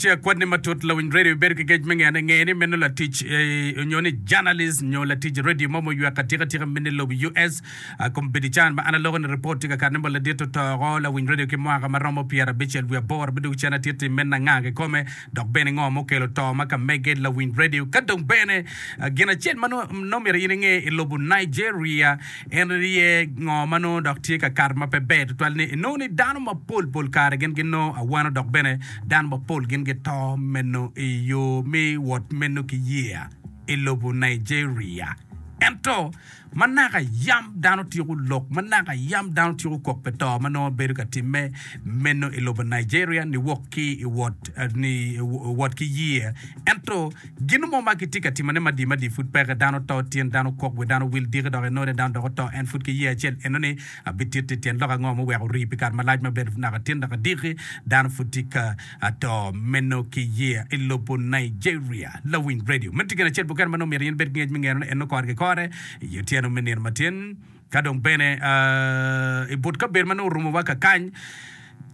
Ci akwani matut, lawiny radio ibibedo ki gec me ngeyo ne, nge ni meno latic nyo ni journalist nyo latic radio mo muywek atika tika mini lobo US. A kom bidican ma an aloko ni report tye ka kati ni mo ladit otoko lawiny radio ki mwaka ma romo pyera abicel wiye aboro bidugo cen atit i mena nga kikome dok bene ngo mukelo to ma ka mege lawiny radio ka dong bene gin acel ma nongo myero in inge i lobo Nigeria en rye ngo ma nongo dok tye ka kato ma pe ber tutwal ni inongo ni dano mapol pol kare gin ginongo awano dok bene Dano mapol gin gito meno i yo me wot meno ki yeya i lobo Nigeria. Ento, ma naka yam dano tyeko lok, ma naka yam dano tyeko kok pi to ma nongo bedo ka timme meno i lobo Nigeria ni wok ki i wot, ni wot ki yeya. Ento, gin mo ma gitye ka timone madi madi pud peke. Dano to, tyen dano kok, wi dano wil diki dok enone dano dok oto, en pud ki yeya acel enoni. Abititti tyen lok ango muweko orii pi kare malac mabedo naka tin dok adiki dano pud tye ka to meno ki yeya i lobo Nigeria? Lawiny redio, meno tye gin acel mukene ma nongo myero in ibed ki ngec me ngeno ni en nongo kore kikore i otyeno me nino matin ka dong bene i but kabedo ma nongo orumowa kakany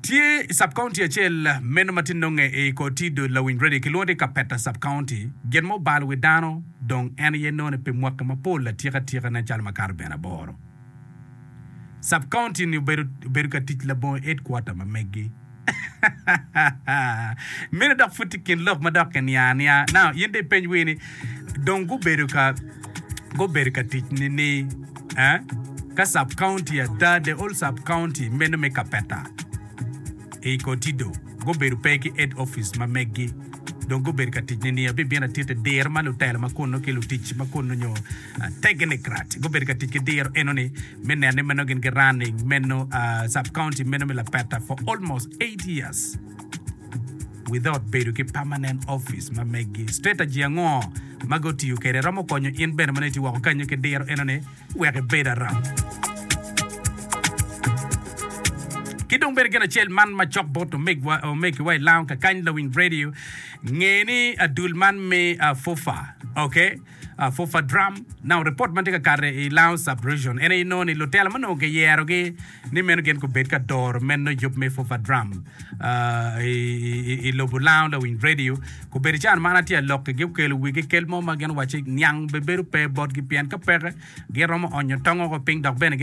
tye subcounty acel meno ma tye nonge i kor Tido Lawiny redio kilwongo ni Kapeta subcounty gin ma obalo wi dano dong en aye none pi mwaki mapol atika tika nen calo makato bene aboro. Sub-county-ni obedo ka tic labongo headquarter ma megi. Meno dok pud tye i kin lok ma dok kiniang aniang. Now, in dong ipeny wii ni, dong gubedo ka gubedo ka tic nini? Eh? Ka sub-county ada, the whole sub-county meno me Kapeta i Kotido gubedo pe ki head office ma megi. Dong gubedo ka tic nini? Abibino atiti diro ma lutelo ma kunnu ki lutic ma kunnu nyo Tegnocrat gubedo ka tic ki diro enoni me neno ni meno gin gi running meno sub county meno me Lapetta for almost eight years without bedo ki permanent office ma meggi. Strategy ango ma gutiyo kwede romo konyo in bene ma nongo itye woko kenyo ki diro enoni wek ibed aram? Ki dong bene gin acel man macok bot omegiwa i lounge kakany Lawiny Radio, nge ni adul man me FUFA, okay, Afufa Drum, Now, ripot ma tye ka kati i Laos Sub-Region en aye nongo ni lutela ma onongo kiyerogi ni meno gin gubed ka doro meno yub me Fufa Drum i lobo Lao lawiny redio, gubedo i can man atye ka lok kigi okelo wigi kel mo ma gin owaco ni niang bebedo pe botgi pien ka peke gin romo onyo tongo woko piny dok bene gin